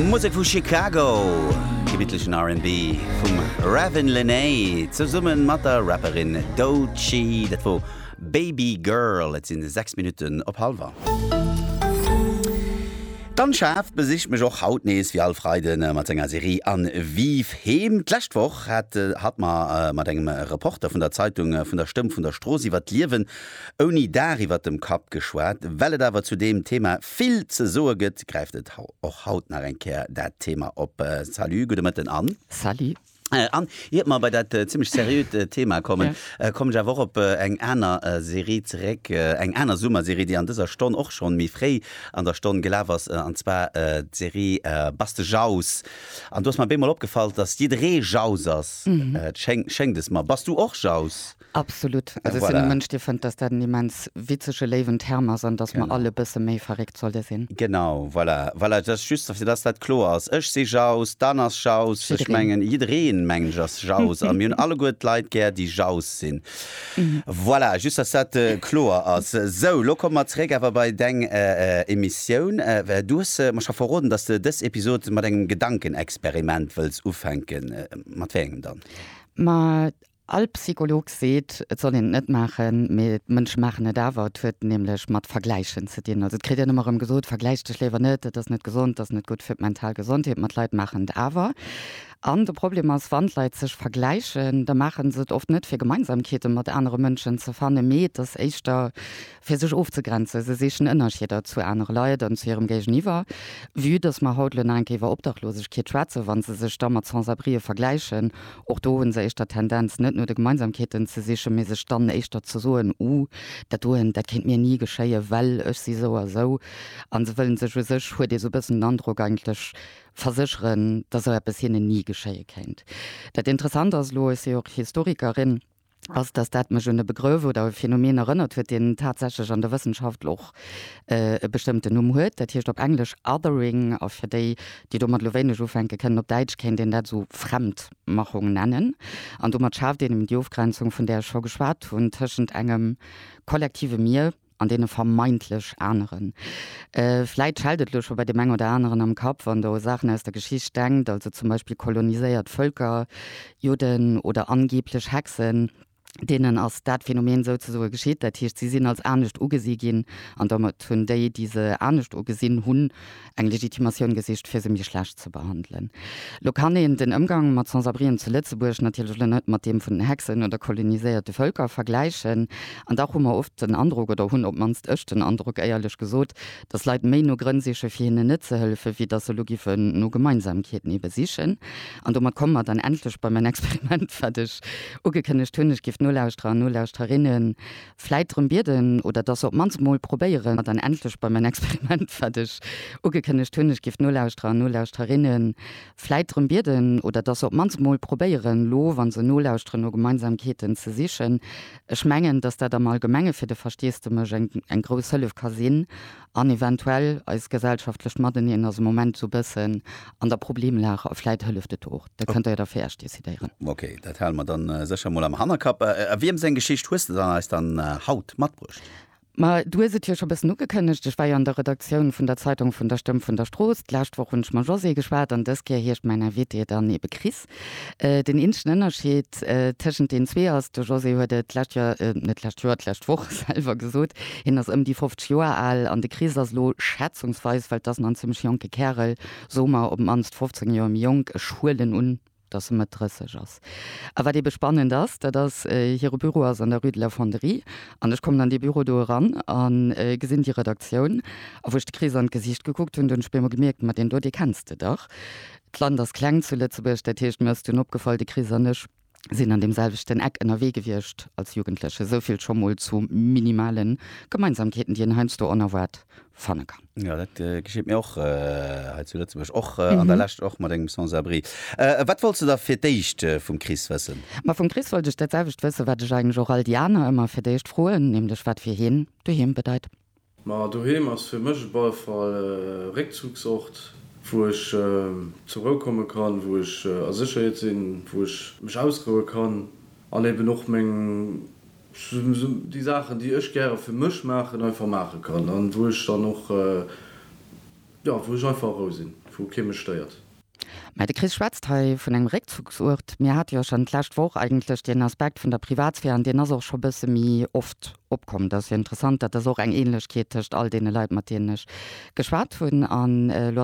Musek vu Chicago, gebittlechen RnB vum Ravin Lenae zesumme mat der Rapperin Doechii. Dat wor Baby Girl. Et si 6 Minutten op hallwer. D'Landschaft besicht mech och haut nees wéi all Freiden mat senger Serie An Vive Heem. D'lescht Woch hat hatt mer mat engem Reporter vun der Zeitung vun der Stëmm vun der Strooss iwwer d'Liewen ouni Daach iwwer dem Kapp geschwat. Well et awer zu deem Thema vill ze soe gëtt, gräift et och haut nach eng Kéier dat Thema op. Salut, gudde Mëtten, Anne. Salut. Anne, iert mer bei dat zimlech seriöt Thema kommen, kommen ech awer och op eng aner Serie zeréck, eng aner Summerserie, déi an dëser Stonn och schonn méi fréi an der Stonn gelaf ass, an zwar d'Serie Baste Jaus. An do ass mer bémol opgefall, dass jidderee Jaus ass, schéngt es mer. Bass du och Jaus? Absolut. Also ech sinn e Mënsch, dee fënnt, dass dat en immens witzege, léiwen Term ass an dass mer all e bësse méi verréckt solle sinn. Genau, voilà. Voilà, just fir dass dat kloer ass. Ech si jauss, d'Anne ass jauss, ech mengen jiddereen, mengen ech, ass jauss a mir hunn alleguer d'Leit gär, déi jauss sinn. Voilà, just dass dat kloer ass. Sou, elo komme mer zeréck awer bei deng Emissioun. Du hues mer scho verroden, dass de dës Episod mat engem Gedankenexperiment wëlls ufänken. Mat wéi engem dann? Ma All Psycholog seet, et soll een et net maachen, mee d'Mënsche maachen et awer. Et huet nämlech mat Vergläichen ze dinn. Also et kritt een ëmmer erëm gesot, vergläich dech léiwer net, dat ass net gesond, dat ass net gutt fir d'mental Gesondheet. Ma d'Leit maachen et awer. An de Problem ass, wann d'Leit sech vergläichen, da maache se et oft net fir Gemeinsamkeete mat anere Mënschen ze fannen, mee et ass éischter, fir sech ofzegrenzen, se sichen Ënnerscheeder zu anere Leit an zu hirem Géigeniwwer, vue dass mer haut elo nach eng Kéier iwwer Obdachlosegkeet schwätzen, wa se sech da mat Sans-abrien vergläichen, och do hu se éischter d'Tendenz, net no de Gemeinsamkeeten ze sichen, mee sech dann éischter ze soen, Uh, dat doen, dat kéint mir ni geschéien, well ech si sou a sou. A se wëlle sech, u sech huet ee sou e bëssen den Androck, eigentlech versécheren, dass sou eppes hinnen ni geschéie kéint. Dat Interessant ass elo, ech si och Historikerin, ass, datt dat mech un e Begrëff oder e Phänomen erënnert huet, deen tatsächlech an der Wëssenschaft och e bestëmmten Numm huet. Dat heescht op Englesch othering, a fir déi, déi domat elo wéineg ufänke kënnen, op Däitsch kéint een dat esou Fremdmachung nennen. An domat schaaft een eben déi Ofgrenzung, vun där ech scho geschwat hunn, tëschent engem kollektive Mir, an deene vermeintlech aneren. Vläit schellt et elo scho bei deem eng oder aneren am Kapp, wann Der u Saachen aus der Geschicht denkt, also zum Beispill koloniséiert Vëlker, Judden oder angeeblech Hexen. Deenen ass dat Phänomen souzesoe geschitt, dat heescht, si sinn als anescht ugesi ginn an domat hunn déi, déi se anescht ugesinn hunn, eng Legitimatioun gesicht, fir se méi schlecht ze behandelen. Lo kann een den Ëmgang mat Sans-abrien zu Lëtzebuerg natierlech elo net mat deem vun den Hexen oder koloniséierte Vëlker vergläichen. An dach hu mer oft den Androck, oder hunn op d'mannst ech den Androck, éierlech gesot, datt Leit méi no Grënn siche fir hinnen net ze hëllefen, wéi datt se elo géifen no Gemeinsamkeeten ebe sichen. An domat komme mer dann endlech bei mäin Experiment, wat ech ugekënnegt hunn, Ech géif nolauschterer an Nolauschterinnen vläit drëm bieden oder dass se op d'mannst emol probéieren, an dann endlech bei mäin Experiment, wat ech ugekënnegt hunn, ech giff d'Nolauschterer an Nolauschterrinne vläit drëm bieden oder dass se op d'mannst emol probéieren, elo wa se nolauschteren, no Gemeinsamkeeten ze sichen. Ech mengen, dass dat am Allgemenge fir de Versteesdemech eng grouss Hëllef ka sinn. an eventuell eist gesellschaftlecht Mateneen ass am Moment esou e bëssen an der Problemlag a vläit hëlleft et och. Dat kënnt Der jo da fir Iech decidéieren. Ok, dat hale mer da sécher emol am Hannerkapp. A wiem seng Geschicht hues de eis dann haut matbruecht? Ma du hues et jo scho bëssen ugekënnegt, ech war jo an der Redaktioun vun der Zeitung vun der Stëmm vun der Strooss. D'lescht Woch hunn ech mam Josée geschwat an dës Kéier heescht mäin Invité dann ebe Chris. Den eenzegen Ënnerscheed tëschent den zwee ass, de José huet et d'lescht Joer, net d'lescht Joer, d'lescht Woch selwer gesot, hien ass ëm déi 50 Joer al an de Chris ass elo, schätzungsweis, well et ass nach en zimmlech jonke Kärel, soe mer op d'mannst 15 Joer méi jonk, ech huelen un, datt e Mëtt 30 ass. A wat eebe spannend ass, dat ass, hire Büro ass an der Rue de la Fonderie an ech kommen an dee Büro do eran a gesinn déi Redaktioun a wou ech de Chris an d'Gesicht gekuckt hunn, do hunn ech op eemol gemierkt, ma deen do, dee kenns de dach. D'Land ass kleng zu Lëtzebuerg, dat heescht, mir ass dunn opgefall, de Chris an ech sinn an deem selwechten Eck ënnerwee gewiescht als Jugendleche. Esou vill scho mol zu minimale Gemeinsamkeeten, déi een heiansdo onerwaart fanne kann. Jo, dat gescheet mir och hei zu Lëtzebuerg, och an der Lescht, och mat engem Sans-abri. Wat wolls de da fir d'éischt vum Chris wëssen? Ma vum Chris wollt ech dat selwecht wëssen, wat ech eigentlech och all déi aner ëmmer fir d'éischt froen, nämlech wat fir hien doheem bedeit. Ma doheem ass fir mech op alle Fall e Réckzugsort, wou ech zur Rou komme kann, wou ech a Sécherheet sinn, wou ech mech ausroue kann an eben och meng, sou déi Saachen, déi ech gäre fir mech maachen, einfach maache kann an wou ech dann och, jo, wou ech einfach a Rou sinn, wou kee mech stéiert. Mä de Chris schwätzt hei vun engem Réckzuchsuert. Mir hate jo schonn d'lescht Woch eigentlech deen Aspekt vun der Privatsphär an deen ass och scho bësse méi oft opkomm. Dat ass jo interessant, dat ass och eng Ähnlechkeet tëscht all deene Leit, mat deenen ech geschwat hunn. An elo ass.